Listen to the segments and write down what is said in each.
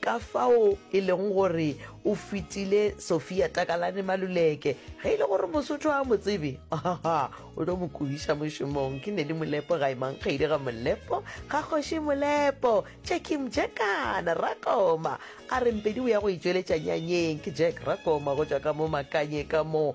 Ka fao e lego gore o fetile Sophia Takalane Maluleke. Ge e le gore Mosotho a mo tsebe, ahaha, o tlo mo kubiša mošomong. Ke Nelly Molepo ga emang kgaile ga Molepo, ga kgoši Molepo, Jackie Mjekana, Rakoma. A re Mpedi o ya go itšweletša nyanyeng. Ke Jack Rakoma go tšwa ka mo Makanye ka mo.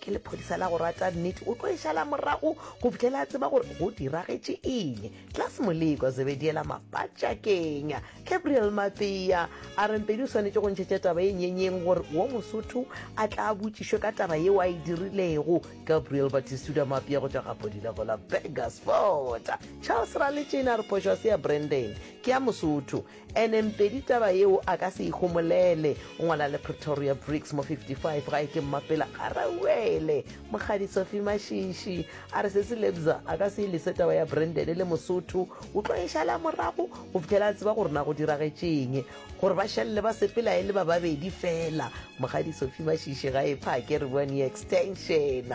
ke lephodisa la go rata nnete o tlo e šala morago go fitlhela a tseba gore go diragetše eng tlas moleko zebediela mapatšakeng gabriel mapea a rempedi o swanetše go ntšhetša taba e nyenyeng gore wo mosotho a tla a botšišwe ka taba yeo a e dirilego gabriel batisuda mapea go tšwa gapodile go la begasfort charles raletšena re phošwa se ya brandon ke ya mosotho Ene Mpedi taba yeo a ka se e homolele. O ngwala le Pretoria Bricks mo 55 gae ke mmapela ga rauele. Mokgadi Sophie Mashishi a re se se lebza a ka se e lese taba ya Brandon le Mosotho. O tlo e šala morago go fitlhela a tseba gore na go diragetšeng. Gore ba šalle ba sepela e le ba babedi fela. Mokgadi Sophie Mashishi ga e phake re bua ni extension.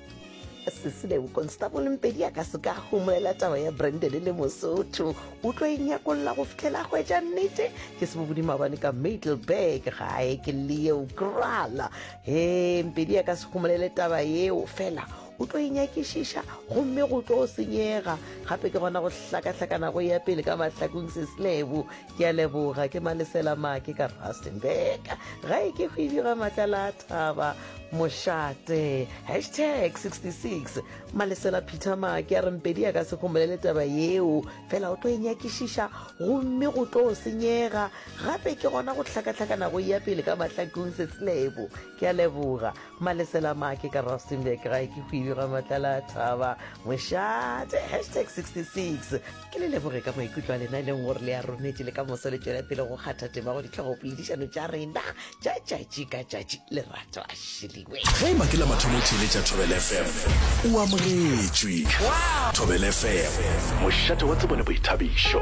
sesilebo constable mpedi a ka se ka gomolela taba ya brandon le mosotho o tlo e nyakolla go fitlhela hwetša nnete ke sebobodi mabane ka middleburg gae ke leo krala he mpedi a ka se gomolele taba yeo fela o tlo e nyakišiša gomme go tlo senyega gape ke gona go hlakahlakana go ya pele ka mahlakong sesilebo ke a leboga ke malesela make ka rustenburg gae ke hwidi ga matlala a thaba mošate hashtag 66 malesela peter make a rempedi ya ka se gomolele taba yeo fela o tlo e nyakišiša gomme go tlo senyega gape ke gona go hlakahlakana go ya pele ka mahlakong setselebo ke a leboga malesela make ka rustenburg gae ke hwidi ga matlala a thaba mošate hashtag 66 ke le leboge ka maikutlo a lena e leng gore le a rometše le ka moso le tšwela pele go kgatha tema go ditlhogo poledišano tša rena tša tšatši ka tšatši lerato a šeliwe ge e makela mathomo theletša thobel fm o amogetšwe thobel fm mošate wa tsebo le boithabišo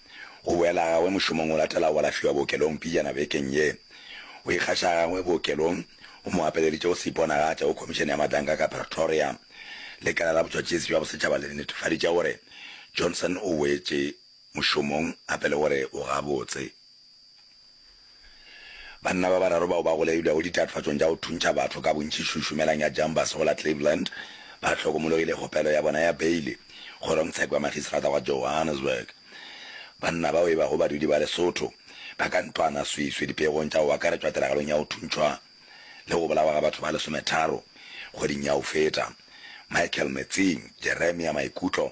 Go boela gagwe mošomong o latelago o lafiwa bookelong pejana bekeng ye. Go ikgatša gagwe bookelong go mo gapeleditše go se iponagatše go Khomišene ya Madanka ka Pretoria. Lekala la Botšwatšesi bja Bosetšhaba le netefaditše gore Johnson o boetše mošomong gape le gore o gabotse. Banna ba bararo bao ba golailwego ditatofatšong tša go thuntšha batho ka bontši Šušumelang ya Jambas go la Cleveland ba hlokomologile kgopelo ya bona ya beile kgorongtsheko ya makgistarata wa Johannesburg. Banna bao e bago badudi ba Lesotho ba ka ntwana swiswi dipeegong tša go akaretšwa tiragalong ya go thuntšhwa le go bolawa ga batho ba lesometharo kgweding ya go feta. Michael Metsing, Jeremia Maikutlo.